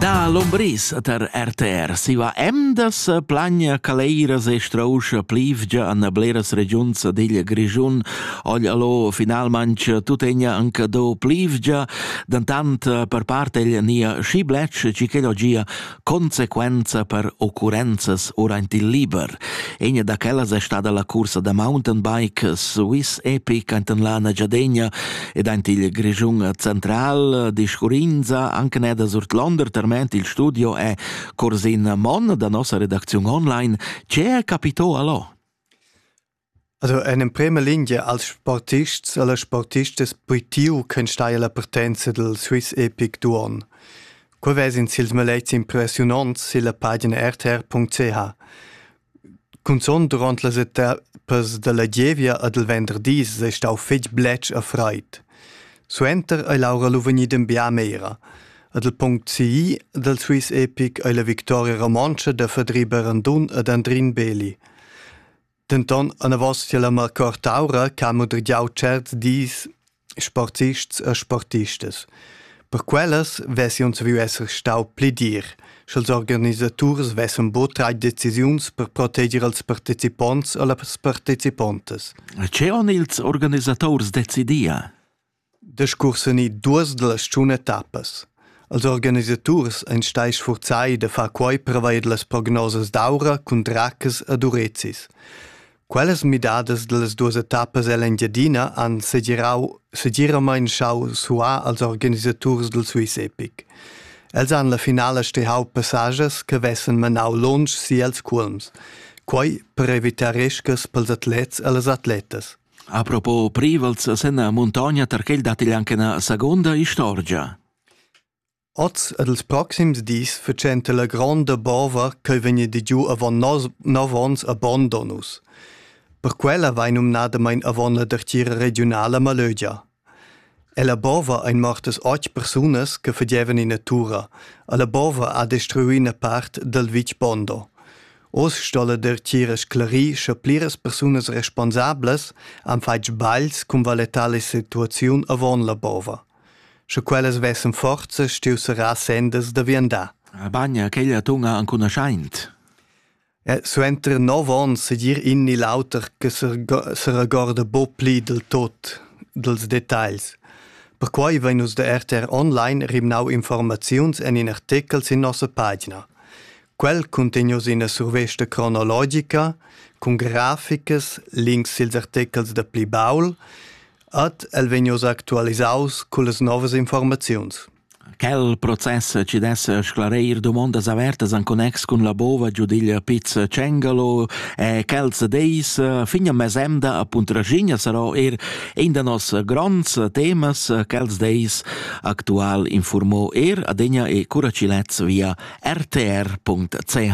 Da Lombris tar RTR siva emdas plagna caleiras e strauscha plivgia an bleras regiuns digl Grischun. Ogl allo finalmanc tutegna anca do plivgia, dantant per part egl nia schi blec, ci chel ogia Consequenza per occurrenzas ora aint il liber. Egna da quellas è stada la cursa da mountain bike Swiss Epic enten la Nagyadegna ed aint il Grischun central discurrinza anche neda surt Londer terment il studio è Corsin Mon da nossa redacziun online. Ce capitò allo? Also en emprema lingia als sportists e las sportistas puitiu ch'enstaglia la partenza dal Swiss Epic d'uonn. Quei vesin sils maletgs impressiunonts silla pagina rtr.ch. Cunzont duront las etappas dalla gievia e dal venderdis ei stau fetg bletsch e freid. Suenter ei l'aura lu vegnida en biamera. E dal punct CI dal Swiss Epic ei la victoria romontscha da Fedri Berendun ed Andrin Beli. Denton anavos tier la Marcor Taura che ha mudregiau certs dis sporzists e sportistas. Per quellas vesi uns viu esser stau pli dir, sch'ils organisaturs vessen buca trai decisiuns per proteger els participonts e las participontas. E che on ils organisators decidia? Discursanì duas da las tschun etappas. Als organisaturs ein stai sfurzai da far quei prevair las prognosas d'aura cun dracas ed urezis. Quellas midadas dallas duas etappas ell'Engiadina han segirau, segiramein schau suar als organisaturs dal Swiss Epic. Els han la finala stehau passagiers che vessen menau lunsch si els cuolms. Quei per evitar riscas pels atlets e las atletas. Apropos privels sen la muntogna tar quel datti anche ina seconda istorgia. Oz ed ils proxims dis fetschenta la gronda bova ch'ei vegn giu avon nov onns a Bondonus. Per quella vai numnadamain avon la dertgira regiunala Malögia. Ella bova ein mortas otg persunas che fagevan ina tura. Alla bova ha destruiu ina part dal vitg Bondo. Oz sto la dertgira sclarir sche pliras persunas responsablas han fatg sbagls cun valetar la situaziun avon la bova. Sche quellas vessen forza stiu serrar sendas da viandar. Bagna, quei atun ha ancunaschaint. Suenter nov onns segir in ni l'auter che seregorda buc pli dil tut dils detagls. Perquei vein nus da RTR Online rimnau informaziuns en in artechel sin nossa pagina. Quel cuntegn oz ina survesta cronologica cun graficas, links sils artechels da pli baul, ed el vegn oz actualisaus cullas novas informaziuns. Quel process chi dess sclareir dumondas avertas in connex cun la bova giudiglia Piz Cengalo e quels deis fin a mesemda appunto Raschigna sarò eir in da nos gronds temas. Quels deis actual informò eir adegna e cura chi lez via rtr.ch.